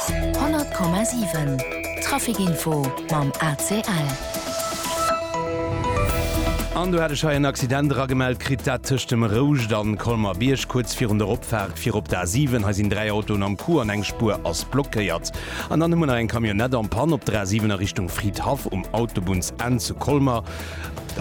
100,7 Trafic Info mam ACL. An do hat ech hei en Accident eragemellt kritt, dat tëscht dem Rouscht a Colmer-Bierg, kuerz virun der Opfaart fir op d'A7. Hei sinn dräi Autoen am Coup an eng Spuer ass blockéiert. An dann hu mer nach eng Camionnette en Panne op der A7 a Richtung Fridhaff um Autobunnsenn zu Colmer.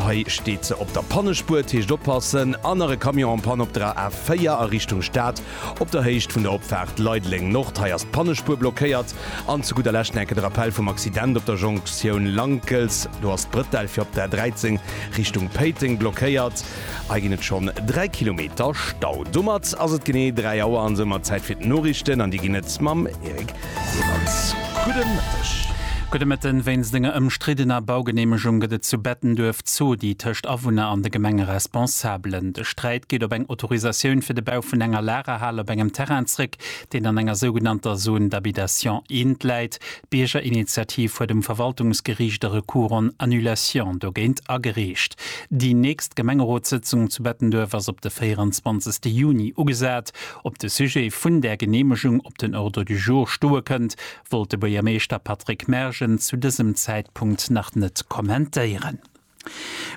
Hei steet se op der Pannespuer, dat heescht oppassen. An nach e Camion en Panne op der A4 a Richtung Stad. Op der Héicht vun der Opfaart Leideleng Nord, hei ass d'Pannespuer blockéiert. An zu gudder Lescht nach eng Kéier de Rappell vum Accident op der Jonktioun Lankels. Do ass d'Brëttel fir op der A13 Richtung Péiteng blockéiert. Hei ginn et schonn 3 Kilometer Stau. Domat ass et genee 3 Auer an soumat Zäit fir d'Noriichten an déi ginn et mam Eric. Timmermans, Gudde Mëtteg. Gudde Mëtten. Wéinst enger ëmstriddener Baugeneemegung gëtt et zu Bettenduerf Zodi tëscht Awunner an de Gemengeresponsabelen. De Sträit geet op eng Autorisatioun fir de Bau vun enger Lagerhal op engem Terrain zréck, deen an enger sougenannter Zone d'habitation int läit. D'Biergerinitiativ huet um Verwaltungsgeriicht e Recours en annulation dogéint agereecht. Déi nächst Gemengerotssëtzung zu Bettenduerf ass op de 24. Juni ugesat. Op de Sujet vun där Geneemegung. den Ordre du jour stoe kënnt, wollt de Buergermeeschter Patrick Mergen zu dësem Zäitpunkt nach net kommentéieren.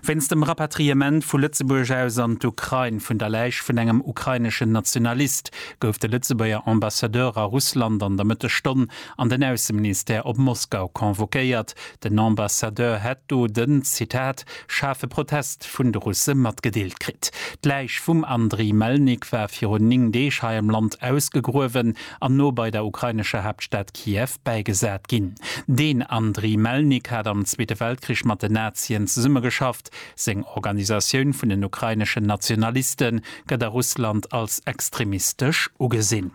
Wéinst dem Rapatriement vu Lëtzebuerg aus an d'Ukrain vun der Läich vun engem ukraineschen Nationalist gouf de Lëtzebuerger Ambassadeur a Russland an der Mëttesstonn an den Ausseministère op Moskau convoquéiert. Den Ambassadeur hätt do den, Zitat, schaarfe Protest vun de Russe matgedeelt kritt. D'Läich vum Andriy Melnik war virun 9 Deeg hei am Land ausgegruewen an no bei der ukrainescher Haaptstad Kiew bäigesat ginn. Deen Andriy Melnik hat am Zweete Weltkrich mat den Nazien zesummegeschafft. Seng Organisatioun vun den ukraineschen Nationaliste gëtt a Russland als extremistesch ugesinn.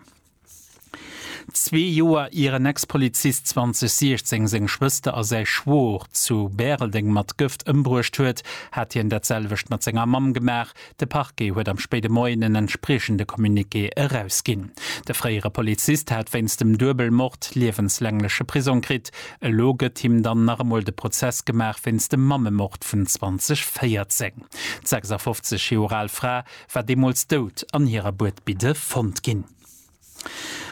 Zwee Joer ier en Ex-Polizist 2016 seng Schwëster a säi Schwoer zu Bäreldeng mat Gëft ëmbruecht huet, hat hien dat selwecht mat senger Mamm gemaach. De Parquet huet am spéide Moien en entspriechende Communiqué erausginn. De fréiere Polizist hat wéinst dem Duebelmord liewenslängleche Prisong kritt. Elo gëtt him dann nach emol de Prozess gemaach wéinst dem Mammemord vun 2014. D' 56 Joer al Fra war deemools dout an hirer Buedbidde fonnt ginn.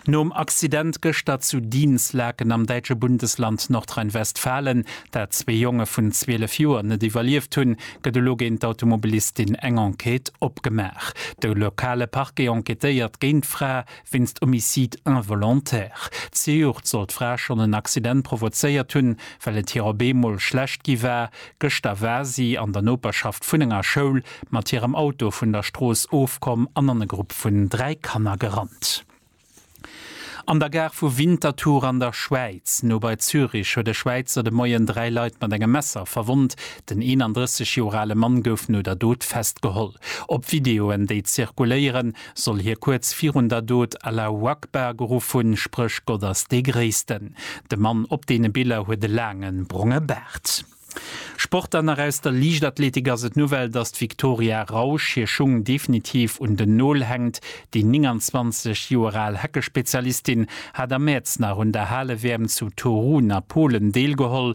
Nom Accident gëschter zu Dinslaken am däitsche Bundesland Nordrhein-Westfalen, dat zwee Jonge vun 12 Joer net iwwerlieft hunn, gëtt elo géint d'Automobilistin eng Enquête opgemaach. De lokale Parquet enquêtéiert géint d'Fra wéinst Homicide involontaire. Zejoert soll d'Fra schonn en Accident provozéiert hunn, well et hir op eemol schlecht gi war. Gëschter war si an der Noperschaft vun enger Schoul mat hirem Auto vun der Strooss ofkomm an an e Grupp vun dräi Kanner gerannt. An der Gare vu Winterthur an der Schwäiz, no bei Zürich, huet e Schwäizer de Moien dräi Leit mat engem Messer verwonnt. Den 31 Joer ale Mann gouf no der Dot festgeholl. Op Videoen, déi zirkuléieren, soll hie kuerz virun der Dot Allahu Akbar geruff hunn, spréch Gott ass dee Gréissten. De Mann op deene Biller huet e laange bronge Baart. Sport Dann nach aus der Liichtathletik ass et d'Nouvelle, datt d'Victoria Rausch hir Schung definitiv un den Nol hänkt. Déi 29 Joer al Heckespezialistin hat am Mäerz nach un der Hale-WM zu Torun a Polen deelgeholl.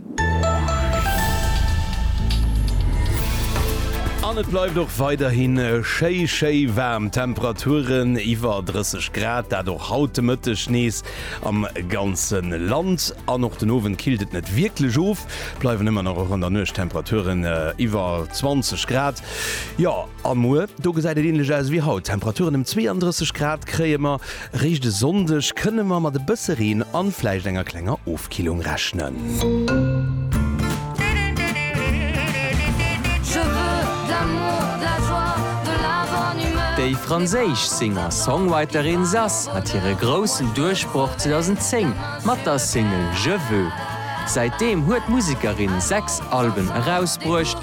An et bleift och weiderhi schéi, schéi waarm. Temperaturen iwwer 30 Grad, dat och haut de Mëtteg nees am ganze Land. An och den Owend killt et net wierklech of, bleiwen ëmmer nach och an der Nuecht Temperaturen iwwer 20 Grad. Jo. A muer? Do gesäit et änlech aus ewéi haut. Temperaturen ëm 32 Grad kréie mer. Réischt e Sonndeg kënne mer mat e bësse Reen a vläicht enger klenger Ofkillung rechnen. Déi franséisch Singer-Songwriterin Zaz hat hire groussen Duerchbroch 2010 mat der Single Je veux. Säitdeem huet d'Musekerin sechs Alben erausbruecht.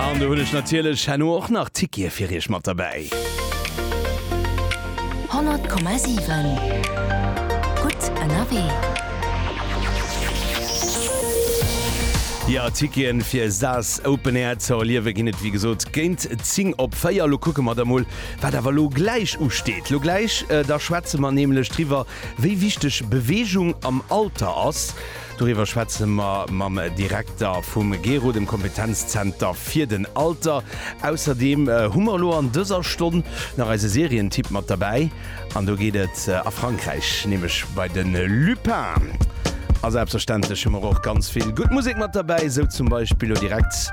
An do hunn ech natierlech herno och nach Tickete fir iech mat derbäi. 100,7 Gutt ënnerwee. Jo, Tickete fir Saas Open Air ze erliewe ginn et wéi gesot géint 10 op 4. Lo kucke mer da mol, wat awer elo gläich usteet. Lo gläich da schwätze mer nämlech driwwer, wéi wichteg Beweegung am Alter ass. Doriwwer schwätze mer mam Direkter vum GERO, dem Kompetenzzenter fir den Alter. Ausserdeem hu mer elo an dëser Stonn nach eise Serientipp mat derbäi an do geet et a Frankräich, nämlech bei de Lupin. A selbstverständlech hu mer och ganz vill gutt Musek mat derbäi, sou zum Beispill elo direkt.